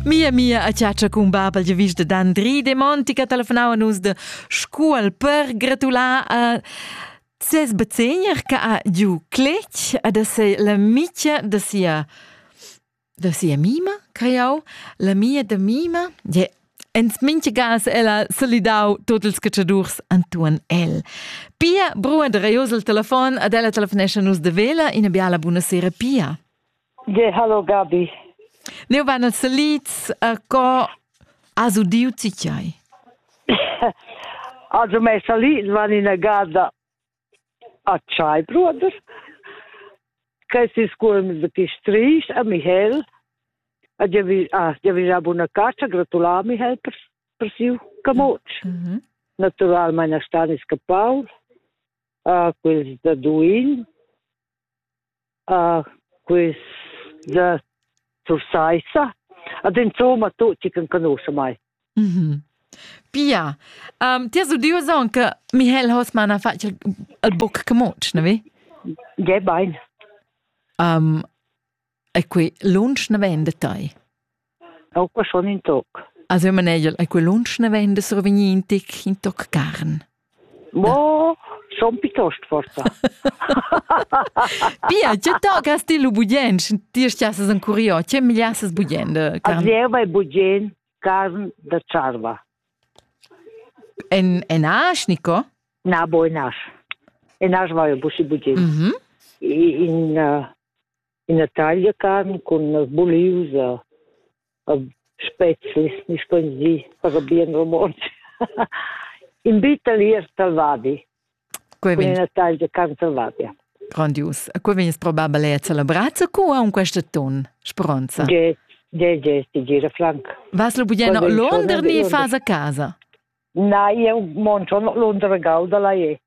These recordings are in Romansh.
Mia mia a chatscha cun babel de vista d'Andri de Monti che telefonava nus de Scuol per gratular a ses bezegner che ha giu cletg ad essere l'amica de sia de sia mima, creiau, la mia de mima, je Ins minchigas ella solidau tot ils catschadurs antuan el. Pia, brua de reios il telefon, ad ella telefonescha nus de vela, ina biala bunasera, Pia. Ge, hallo Gabi. Neu van els selids a co has udiu ti tgei? Also mei salid van ina gada a tschai, bruder. Questi scuolm de Pistrich a Michel. A giavisa buna caccia, gratulà Michel per, per siu camot. Mm -hmm. Naturalmente stanno scappati, uh, quelli da Duin, ah, questa sursaissa. Ad insomma tutti che conoscono mai. Mm-hmm. Pia, um, ti has udiu aunc Michael Hosmann ha fatg il buc camoc, ne vi? Ja, bein. Um, e qui lunsch ne vende tai. Aunc ma schon in toc. Also Manegel, ei quel lunsch ne vegn da survegnir in tic, in toc carn. Mo schon piuttost forsa. Pia, tge toccas ti lu bugien? Ti stiasses en curio, tge migliasses bugien de carn? Azieva è bugien carn da charva. En, en asch, Nico? Na, bo en asch. En asch va jo busi bugien. Mhm. In, uh, ina taglia carn cun buliusa spezies ni spensi per bien romontsch in bitalier salvadi cun ina taglia carn salvadia grandius a cui vegnes probabel è celebrazza cu ha un questa ton speranza Get, get, get, ti gira frank vas lo bugeno Londra ni fas a casa na io mon sono Londra galda la e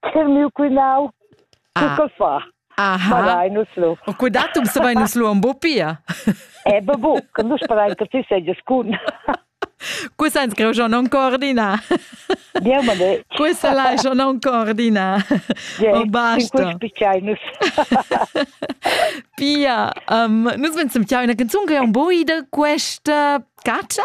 Che miu quinau. Ah. Che fa? Aha. Sparai nus lu. O cudatum se vai nus lu un bo pia. Eh, be bu, che nus sperein che ti seges cun. Cu sens che jo non coordina? Niemand de. Cu se lai jo non coordina? O basta. Pia, um, nus vensem tiau una canzun che è un bo ida questa caccia?